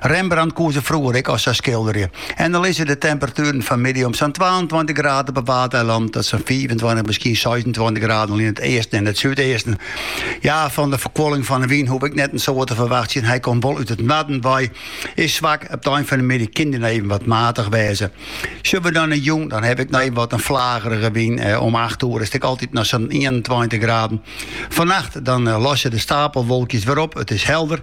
Rembrandt koe se froeger ek al sa skilderje. En dan lizze de temperatueren fanmiddei om sa'n twaentweintich graden op 'e Waadeilannen oant sa'n fiifentweintich, miskien seisentweintich graden al yn it easten en it súdeasten. Ja, fan de ferkoeling fan de wyn hoege we net in soad te ferwachtsjen, hy komt wol út it noarden wei, is swak, op de ein fan de middei kin dy noch even wat matich wêze. Sjogge we dan nei jûn, dan haw ik noch even wat in flagerige wyn, om acht oere is it ek altyd noch sa'n ienentweintich graden. Fannacht dan losse dy stapelwolkjes wer op, it is helder.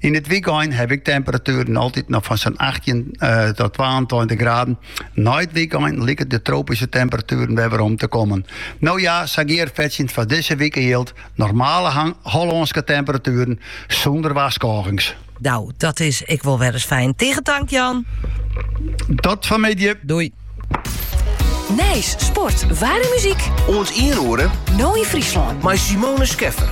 Yn it wykein ha ik temperatueren altyd noch fan sa'n 18 tot 22 graden. Nei it wykein lykje de tropyske temperatueren wer werom te kommen. No ja, sa gearfetsjend foar dizze wike jildt, normale Hollânske temperatueren sûnder warskôgings. No, dat is ek wol wer ris fijn. Tige tank Jan. Oant fan 'e middei. Doei. Nijs, sport, waar en muzyk. Oant ien oere. No yn Fryslân. Mei Simone Scheffer.